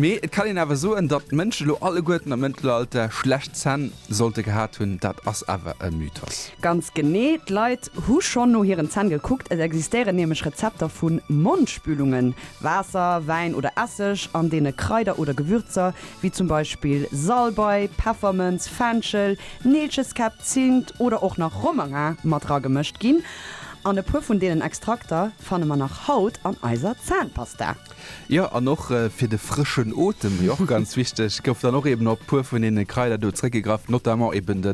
Mee et kann een awer soen, datt d'Mënschen elo alleguerten am Mëttelalter schlecht Zänn sollte gehat hunn. Dat ass awer e Mythos. Ganz genee, d'Leit hu schonn no hiren Zänn gekuckt. Et existéieren nämlech Rezepter vu Mondspülungen, Waasser, Wäin oder Esseg, an deene Kraider oder Gewürzer wéi zum Beispill Salbei, Peffermënz, Fenchel, Neelcheskäpp, Zint oder och nach Romarin mat dragemëscht ginn. An e puer vun deenen Extrakter fanne mer nach haut an eiser Zänpasta. Jo, an och fir de frëschen Otem, déi och ganz wichteg, gouf dann och eben op puer vun deene Kraider do zréckgegraff, notamment eben de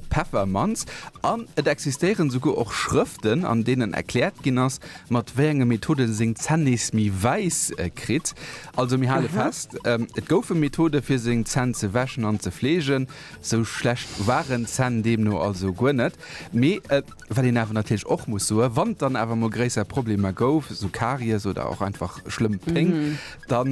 Peffermanz. An et existéieren esouguer och Schrëften, an deenen erkläert ginn ass, mat wéi enge Methode en seng Zänn nees méi wäiss kritt. Also mir hale fest, et goufe Methode fir seng Zänn ze wäschen an ze fleegen. Esou schlecht waren d'Zänn deemno also guer net. Mee Wat een awer natierlech och muss soen, wann et dann awer emol gréisser Problemer gouf, esou Karies oder och einfach schlëmm Péng, da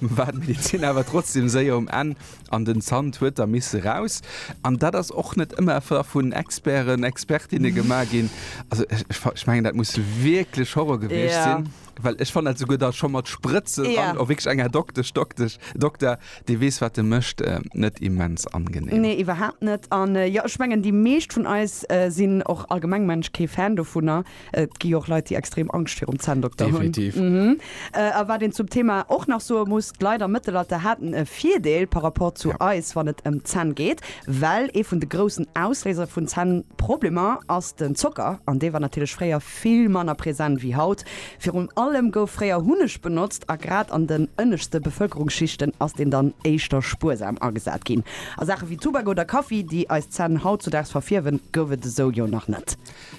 war d'Medezin awer trotzdeem séier um Enn an den Zant huet da misse raus. An dat ass och net ëmmer da vun Experten, Expertinne gemaach ginn. Also ech mengen, dat muss wierklech Horror gewiescht sinn. Well ech fanne dat souguer da scho mat Sprëtzen Ja. an och wierklech enger Doktesch, Doktesch, Dokter, dee weess, wat e mécht, äh, net immens angenehm. Nee, iwwerhaapt net. An jo, ech mengen, déi meescht vun eis sinn och allgemeng, mengen ech, kee Fan dovunner. Et gi jo och Leit, déi extrem Angscht virum Zänndokter hunn. Definitiv. Mhm. A wat een zum Thema och nach soe muss, d'Leit am Mëttelalter haten e Virdeel par rapport zu eis, wann et ëm d'Zänn geet, well ee vun de groussen Ausléiser vun Zännproblemer ass den Zocker, an dee war natierlech fréier vill manner present wéi haut. Virun allem gouf fréier Hunneg benotzt a grad an den ënneschte Bevëlkerungsschichten ass deen dann éischter spuersam agesat ginn. A Saache wéi Tubak oder Kaffi, déi eis Zänn hautzudaags verfierwen, gouf et esou jo nach net.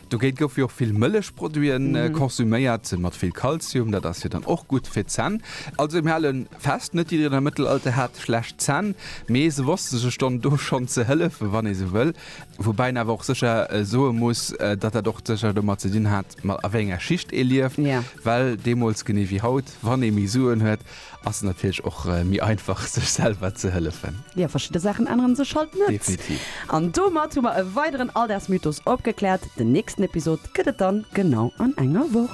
Dogéint goufe jo och vill Mëllechproduite konsuméiert, mat vill Kalzium, dat ass jo dann och gutt fir d'Zänn. Also mir hale fest, net jiddereen am Mëttelalter hat schlecht Zänn, mee se wosste sech dann do schonn ze hëllefen, wann ee sou wëll. Woubäi een awer och sécher soe muss, datt dat och sécher domat ze dinn hat, ma a wéi enger Schicht ee lieft. Well deemools, genee wéi haut, wann ee méi Suen huet, ass et natierlech och méi einfach, sech selwer ze hëllefen. Jo, verschidde Saachen ännere sech halt net. Definitiv. An domat hu mer e weideren Alldagsmythos opgekläert. Den nächsten Episod gëtt et dann genau an enger Woch.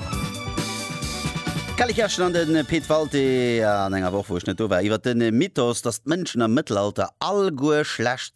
D'Kelly Kerschen an de Pit Walté an enger Woch, wou ech net do war, iwwer de Mythos, datt d'Mënschen am Mëttelalter alleguer schlecht